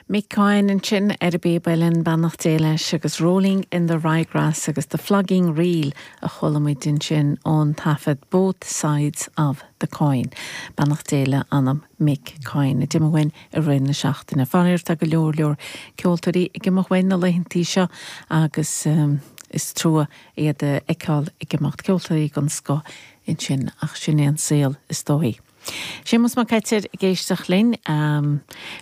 Mick Coyne ansin ar an bpíoba linn, beannacht Dé leis, agus Rolling in the Ryegrass agus The Flogging Reel a chuala muid ansin ón taifead Both Sides of the Coin. Beannacht Dé le hanam Mick Coyne a d'imigh uainn i rith na seachtaine. Faraor tá go leor leor ceoltóirí ag imeacht uainn na laethantaí seo agus is trua iad a fheiceáil ag imeacht, ceoltóirí den scoth ansin ach sin é an saol is dóigh. Séamus Mac Coitir ag éisteacht linn.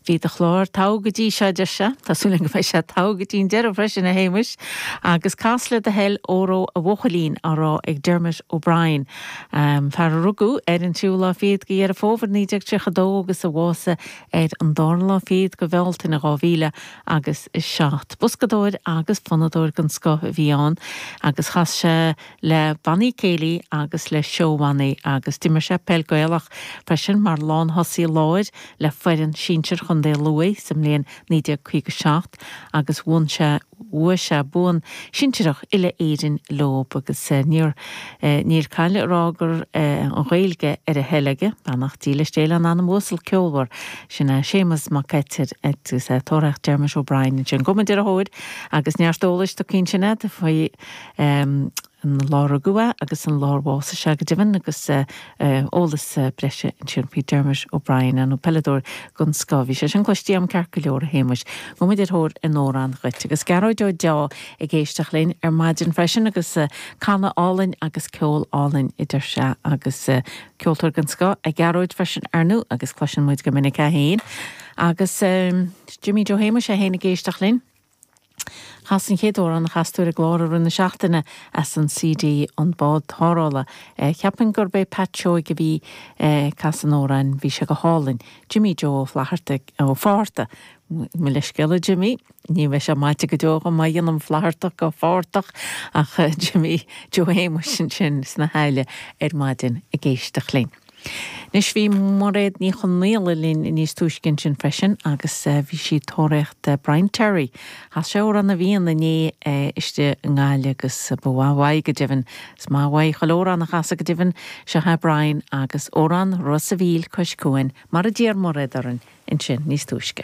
Bhí do chlár togha go dtí seo, a deir sé. Tá súil agam go mbeidh sé togha go dtí an deireadh freisin, a Shéamuis. Agus cas le do thoil 'Óró a Bháidín' á rá ag Dermot O'Brien, fear a rugadh ar an tríú lá fichead de Dheireadh Fómhair 1932 agus a bhásaigh ar an darna lá fichead de Bhealtaine dhá mhíle agus a seacht. Boscadóir agus fonnadóir den scoth a bhí ann agus chas sé, le bannaí céilí agus le seó-bhannaí agus d'imir sé peil Gaelach freisin mar lánthosaí láir le foireann sinsir Chontae Lú sa mbliain 1957 agus bhuan sé bhuaigh sé bonn sinsireach uile-Éireann leo agus níl call a rá go raibh an Ghaeilge ar a thoil aige. Beannacht Dé leis Dé lena anam uasal ceolmhar sin ó Séamus Mac Coitir agus ag tóraíocht Dermot O'Brien ansin. Gabhfaidh muid ar a thóir agus neart eolais go cinnte ansin faoi an lá ar rugadh é agus an lá ar bhásaigh sé, go deimhin, agus eolas breise ansin faoi Dermot O'Brien, an peileadóir den scoth a bhí sé sin. Cloistí am ceart go leor, a Shéamais. Gabhfaidh muid ar thóir an amhráin dhuit. Agus Gearóid Ó Deá ag éisteacht linn ar maidin freisin agus canadh go hálainn agus ceol álainn a deir sé agus ceoltóir den scoth é Gearóid freisin, ar ndú, agus cloiseann muid go minic é féin agus Jimmy Joe Shéamais é féin ag éisteacht linn. Chas Seán Céad Amhrán na nGasúr ar a chlár i rith na seachtaine as an CD An Bád Tarrthála. Cheapfainn gurb é Pat Seoigh a bhí ag casadh an amhráin, bhí sé go hálainn. Jimmy Joe Ó Flatharta, Ó Fátharta, mo leithscéal a Jimmy, ní bheidh sé maite go deo dom má dhéanaim Flathartach de Fáthartach ach Jimmy Joe Shéamuis ansin sna hAille ar maidin ag éisteacht linn. Anois, bhí Mairéad Ní Chonaola linn níos túisce ansin freisin agus bhí sí ag tóraíocht Brian Terry. Chas sé Amhrán na bhFiann inné istigh i nGaillimh agus ba mhaith uaidh, go deimhin. Is maith uaidh chuile amhrán a chasann sé, go deimhin. Seo chugaibh Brian agus amhrán Ros a' Mhíl Cois Cuain, mar a d'iarr Mairéad orainn ansin níos túisce.